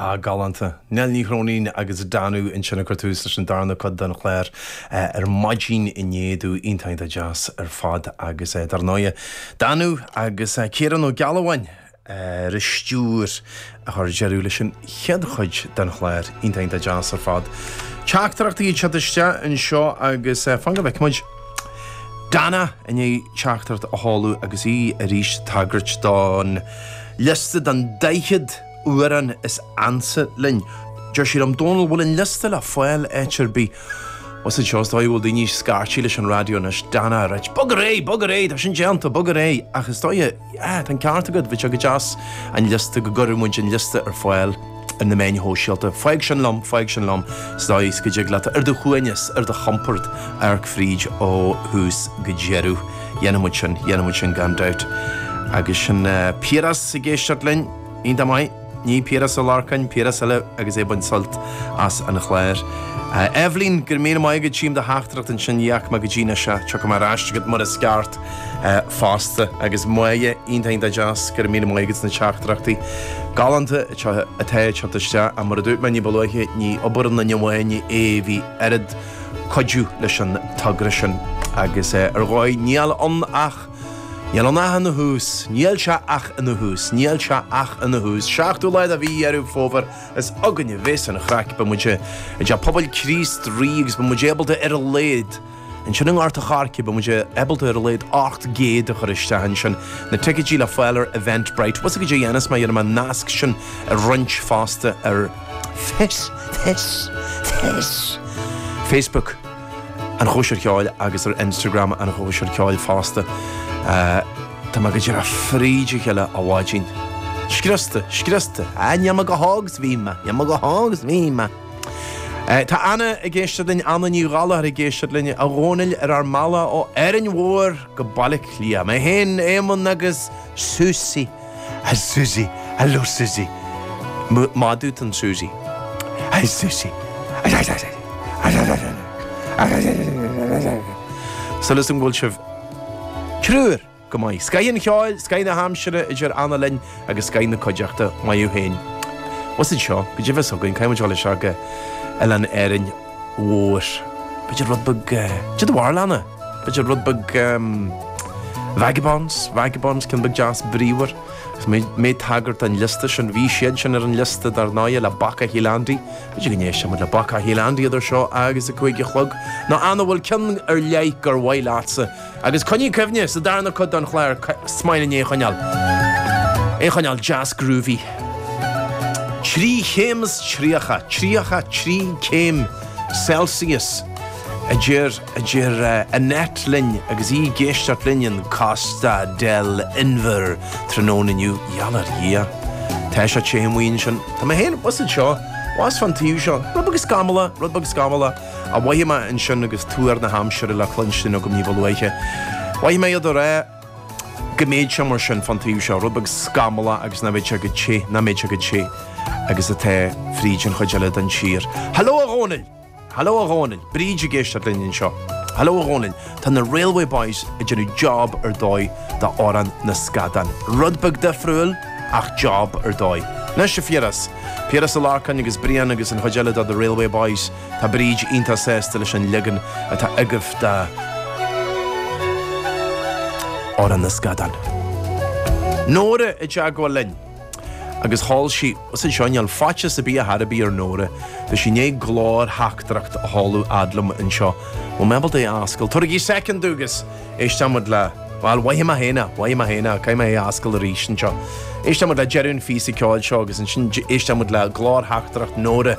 Ah, galánta. Nell Ní Chróinín agus Danú ansin ag cur tús leis an darna cuid den chlár ar maidin inné domh. Iontach deas ar fad agus dar ndóighe, Danú agus Ciarán Ó Gealbháin ar an stiúir a chur deireadh leis an chéad chuid den chlár. Iontach deas ar fad. Teachtaireachtaí ag teacht isteach anseo agus fan go bhfeicfidh muid. Dana i ndiaidh teachtaireacht a sheoladh agus í arís ag tagairt don liosta den 40 amhrán is ansa linn. Deir sí liom, Dónall, bhfuil an liosta le fáil áit ar bith? Agus anseo is dóigh go bhfuil daoine ag scairtí leis an raidió anois. Dana, right. Bog ar aghaidh! Bog ar aghaidh! Tá sin déanta! Bog ar aghaidh! Ach is dóigh a. Yeah, tá an ceart agat, bheadh sé go deas an liosta, go gcuirfeadh muid an liosta ar fáil ar na meáin shóisialta. Fág sin liom, fág sin liom sa dóigh is go dtig leat, ar do shuaimhneas, ar do chompord, amharc fríd ó thús go deireadh. Dhéanfaidh muid sin, dhéanfaidh muid sin gan dabht. Agus sin Piaras ag éisteacht linn. Iontach maith. Ní Piaras Ó Lorcáin, Piaras eile agus é ag baint sult as an chlár. A Eibhlín, go raibh míle maith agat, tchím do theachtaireacht ansin, ní fhaca mé go dtí anois é. Tiocfaidh mé ar ais chugat mar is ceart fosta. Agus Moya, iontach iontach deas, go raibh míle maith agat as na teachtaireachtaí galánta atá ag teacht isteach. Ach mar a dúirt mé ní ba luaithe, ní obair aon duine amháin é, bhí oiread cuidiú leis an togra sin agus ar dhóigh níl ann ach. Níl ann ach ina thús. Níl sé ach ina thús. Níl sé ach ina thús. Seachtú lá de mhí Dheireadh Fómhair, is againn a bheas an chraic. Beidh muid i dTeach Pobail Críost Rí agus beidh muid ábalta ar a laghad, ansin i nGort an Choirce, beidh muid ábalta ar a laghad 800 a chur isteach ansin. Na ticeidí le fáil ar Eventbrite. Bhfuil 's agat caidé a dhéanfas mé, dhéanfaidh mé an nasc sin a roinnt fosta ar Face. Face. Face. Facebook. an chóisir cheoil agus ar Instagram an chóisir cheoil fosta. Tá mé go díreach fríd a chéile, a Bháidín. Scriosta, scriosta. Ah, níl mé chomh hóg 's bhí mé, níl mé chomh hóg 's bhí mé. Tá Anna ag éisteacht linn, Anna Ní Ghallachair ag éisteacht linn, a Dhónaill ar ár mbealach ó Árainn Mhór go Baile Átha Cliath. Mé féin, Éamonn agus Susie. Hi Susie, Hello Susie, madadh atá in Susie. Hi Susie, súil agam go bhfuil sibh triúr go maith? Scaith an cheoil, scaith na haimsire idir an dá linn agus scaith na cuideachta. Maith thú fhéin. What's it seo? Caidé a bheas againn, caithfidh muid dhul isteach go Oileán Árainn. Mhór, b'fhéidir rud beag, de do bharlán, b'fhéidir rud beag vagabonds, vagabonds, ceann beag deas bríomhar. Agus mé ag tagairt don liosta sin, bhí siad sin ar an liosta dar ndóigh le Bacach Shíol Andaí, b'fhéidir go n-éistfidh muid le Bacach Shíol Andaí idir seo agus a cúig a chlog, nó an bhfuil ceann ar leith gur mhaith leatsa? Agus coinnigh cuimhne, sa darna cuid don chlár, is maith linn é a choinneáil, é a choinneáil deas groovy. Trí chéim is tríocha, tríocha trí céim Celsius, a deir, a deir Annette linn agus í ag éisteacht linn in Costa del Inbhir tráthnóna inniu. Gheall ar Dhia. Tá sé te amuigh ansin. Tá mé féin thuas anseo, thuas fán taobh seo, rud beag scamallach, rud beag scamallach. a mhothaigh mé ansin agus tuar na haimsire le cluinstin agam ní ba luaithe. Mhothaigh mé iad ag rá go mbeidh sé mar sin fán taobh seo, rud beag scamallach agus nach mbeidh sé chomh te, nach mbeidh sé chomh te agus atá fríd an chuid eile den tír. Hello a Dhónaill! Hello a Dhónaill! Bríd ag éisteacht linn anseo. Hello a Dhónaill! Tá na Railway Boys ag déanamh job ar dóigh de Amhrán na Scadán. Rud beag difriúil, ach job ar dóigh. Anois a Phiaras. Piaras Ó Lorcáin agus Brian agus an chuid eile de The Railway Boys, tá Bríd iontach sásta leis an leagan atá agaibh de Amhrán na Scadán. Nóra, i dteagmháil linn. agus sheol sí suas anseo. Níl faitíos ar bith ar chor ar bith ar Nóra. Tá sí i ndiaidh glórtheachtaireacht a sheoladh fhad liom anseo. Bhfuil mé ábalta é a ascaill? Tabhairigí soicind dom agus éistfidh muid le. bhuel, mhothaigh mé féin é, mhothaigh mé féin é, caithfidh mé é a fhoscailt arís anseo. Éistfidh muid le deireadh an phíosa ceoil seo agus ansin éistfidh muid le glórtheachtaireacht Nóra.